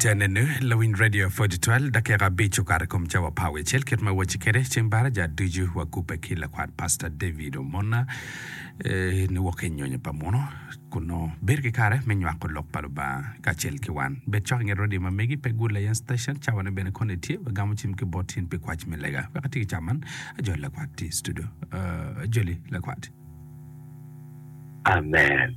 Enene lawiny radio pwod twal dakika abic okato i kom cawa pa awicel kit ma wacci kwede ceng baraja ducu wakubbe ki lakwat Pastor David Omona eh, ni wok i nyonyo pa muno kun nongo bedo ki kare me nywako lok pa Lubanga kacel ki wan. Bed cok i nget radio ma megi pe Good Lion Station cawane bene koni tye wagamo cim ki bot in pi kwac me lega. Wek ati ki ca man ajoli lakwat tye i studio. Ah, ajoli lakwat. Amen.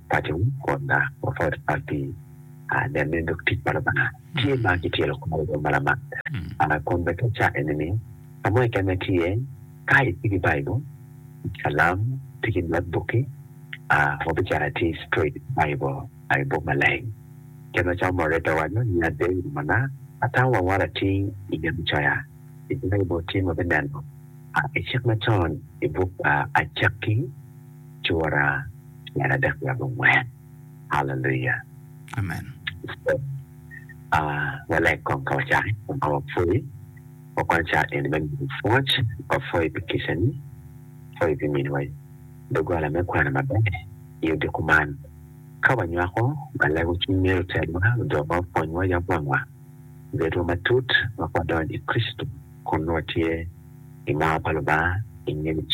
paco kod ma mapat pat pi nenne dok tic pa Lubanga tye ma kityelo kore dong ma lamak. Kun bene te ca eni ni ka mo keken ma tye ka itye ki Baibul, kalam, itye ki not bukki, wabicako atir straight Baibul i buk maleng. Kit macalo Moreta owaco ni ade i boma-na atamo waworo atir i gen me coya i Baibul tye ma wabineno i cik macon i buk Acakki. cura tyen adek nyo abongwen. Haleluya! Amen. Waleg kong ka wacako i kom ma wapwoyi. Wakwano cawa eni me miyo pwoc. Wapwoyi pi kicani, wapwoyi pi miniwa doggola me kwano maber i odiko man. Ka wanywako, walego cwiny meri otelwa, odowa, opwonywa, yab wangwa, obedwa matut wek wadony i Kricito kun nongo watye i mar pa Lubanga i ngec.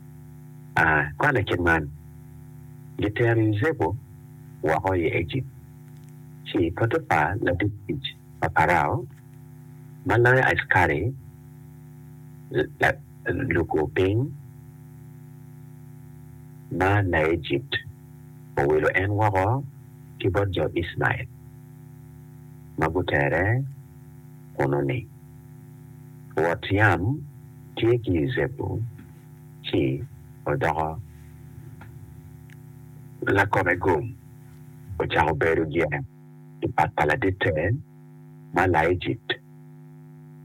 aa kwan i kit man, Gitero Yucepu woko i Ejipt, ci Potipa latit tic pa Parao, ma loyo askari lukur piny ma Laejipt, owilo en woko ki bot jo Icmael ma gutere kunnu-ni. Rwot yam tye ki Yucepu ci odoko lakome gum, ocako bedo gin i pat pa laditte ma Laejipt,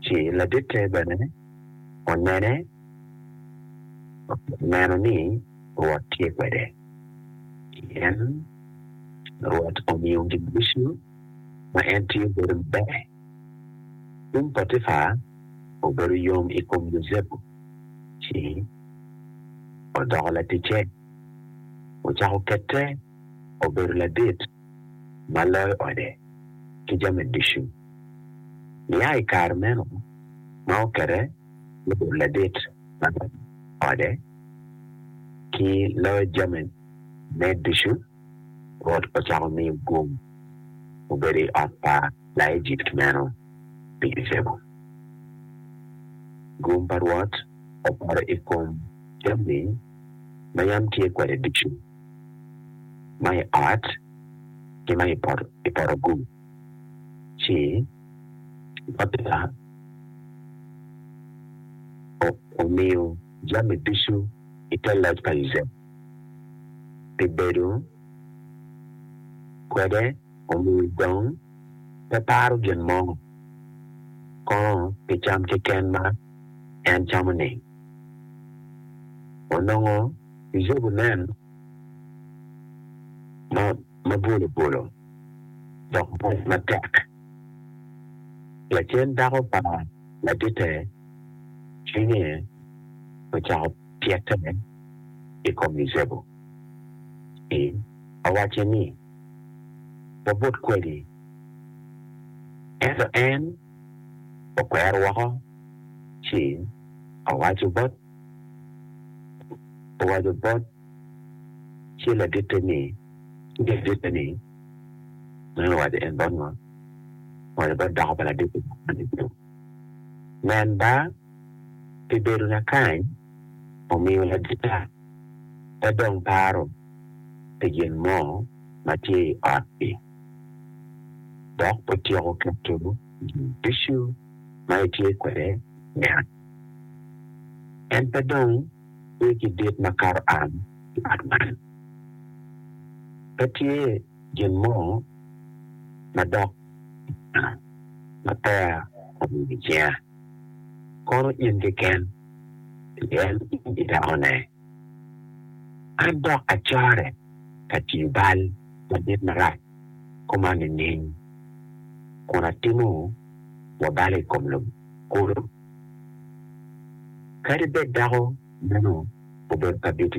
ci laditte bene onene, oneno ni Rwot tye kwede, pien Rwot omiyo gin ducu ma en tiyo bedo maber. Tung Potipa obedo yom i kom Yucepu, ci odoko laticce. Ocako kette obedo ladit ma loyo ode ki jami ducu. Nia i kare meno ma okette obedo ladit ma loyo ode ki loyo jamine ducu, Rwot ocako miyo gum obedo i ot pa Laejipt meno pi Icebo. Gum pa Rwot opoto i kom jammi ma yam tye kwede ducu, ma i ot ki ma i poto gum, ci Botela omiyo jammi ducu i te loc pa Icebo. pi bedo kwede omiyo dong pe paro gin mo kono pi cam keken ma en camo-ni. Onongo Yucepu nen ma bwolobwolo dok mwoc matek. Lacen dako pa laditte cwinye ocako. cite i kom Yucepu, ci awacce ni, 'Wabut kwedi. Ento en okwero woko, ci owaco bot owaco bot ci laditte ni, ci laditte ni, Meno owaco en bot ngo? Owaco bot dako pa laditte ni, Nen ba! pi bedo lakany omiyo ladita pe dong paro pi gin mo ma tye i ot-ti, dok otyeko keto gin ducu ma etye kwede i ot. En pe dong tye ki dit makato am i ot man. Pe tye gin mo madok i ot ma peya omiyo icinga. kono in keken, pien in idakone. An dok acorre ka tiyo bal madit marac koma nining, kun atimo wa bal i kom lobo kulu? Kadi bed dako meno obedo ka bito